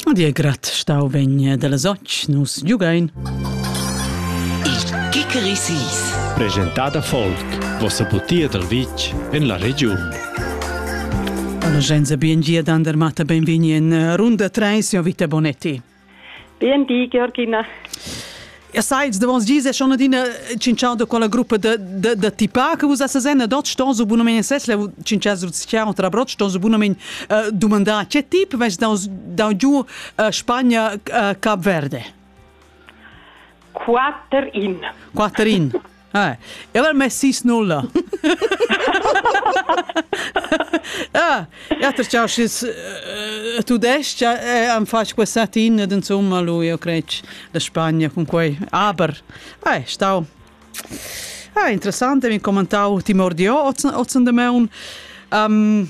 A dir grat stau vegn dalla soc, nus giugain. Il Kikerisis. Presentada Folk, vossa butia dal vitg en la regiun. Alla Genza Biengia d'Andermatta benvigni in runda 3, sia vita Bonetti. BND Georgina. Ja sai ils davons dis e schon adina cinciau da quella gruppa da da da tipa che vus essas en dot ston su bunamein ses la cincias vus ciao tra brot ston su bunamein domandar che tip vest da da giu Spagna Cap Verde 4 in 4 in Hai, el ha mess sis nulla. Ah, ja ter chau schis tu dest ja am fatg questa tina den somma lui io crec la Spagna con quei aber ai stau Ah, interessante, mi commentau Timor di Ozzen de Meun. Um,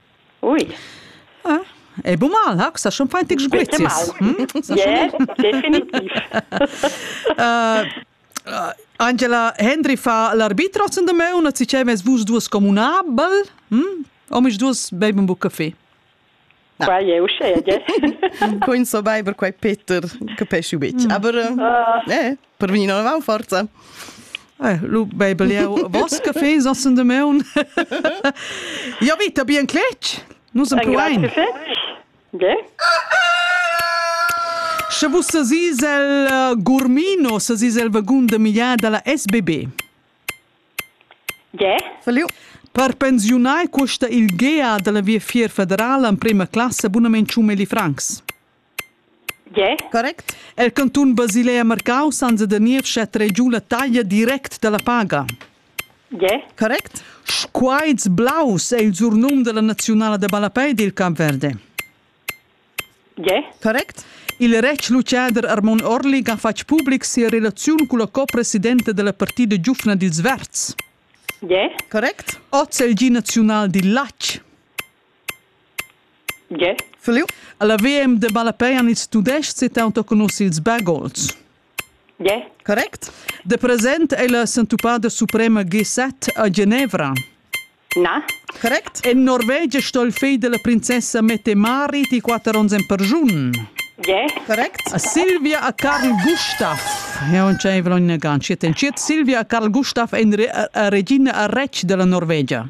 Ui. Ah, è bu mal, ha? Sa schon fein tic spezies. Definitiv. Angela Hendry fa l'arbitro sen de me, una cicemes vus duas comunabel, hm? omis duas beib un bu caffè. Qua è uscea, Quin so beiber quai Peter, capesci bit. Mm. Aber, mm. eh. per vegnir inavant forza. Eh, lu bebel jeu vos caffè sassen de meun. Ja vita bien cletg. Nus en plein. De? Sche vus sesisel uh, Gurmino, sesisel vagun de migliar dalla SBB. De? Feliu. Per pensiunai custa il GEA della Via Fier Federala en prima classe abunament 100.000 francs. Gie. Correct. El cantun Basilea Marcau senza da niev schet regiu la taglia direct dalla paga. Gie. Correct. Squaits blaus è il surnum della nazionala da ballapei dil Camp Verde. Gie. Correct. Il retg lucader Armon Orlig ha fatg public sia relaziun con la co-presidenta della partida giufna dils Verds. Gie. Correct. Oz è il gi nazional dil latg. Tge? La VM de malapei han ils Tudestgs taunt conosci ils Bergolds. Tge? Correct. De present ei la sentupada suprema G7 a Genevra. Na? Correct. En Norvegia sto il figl della princessa mette Mari di quatter ons en per giun. Tge? Correct. A Silvia a Karl Gustav. Ja, und c'è in gancio. Silvia a Karl Gustav è regina a Rec della Norvegia.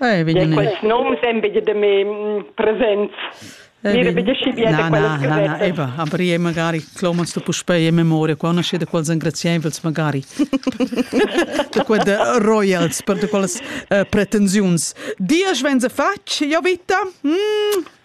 Eh, vegn... Quels noms èn betg da me presents. Eh, Mira, bitte schi bene na, na, na, na, eba, aber io magari cloma sto puspei in memoria, qua nasce da quels engrazievels magari, da quelle royals, per da quelles uh, pretensiuns. Dias venza fatg, io vita? Mm.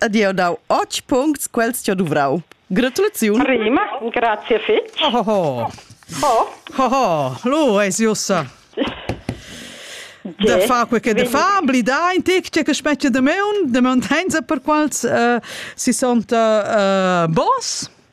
ed jeu dau otg puncts quels che duvrau. Gratulaziun. Prima, grazie fetg. Oh, oh, oh. Oh. Oh, oh. Lu eis jussa. De fa quel che de fa, blida in tic che specie de meun, de meuntenza per quals uh, si sont uh, boss.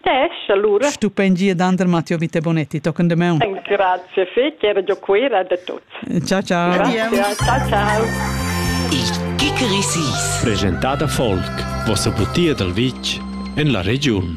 Tesch, allura. Stupend gia d'andrer Matteo Vite Bonetti tochen demaun. Grazie fetg, era giò Cuera da tuts. Ciao ciao. Grazie. Ciao ciao. Il Kickerisis. Presentada Volk, vossa butia dal vitg en la regiun.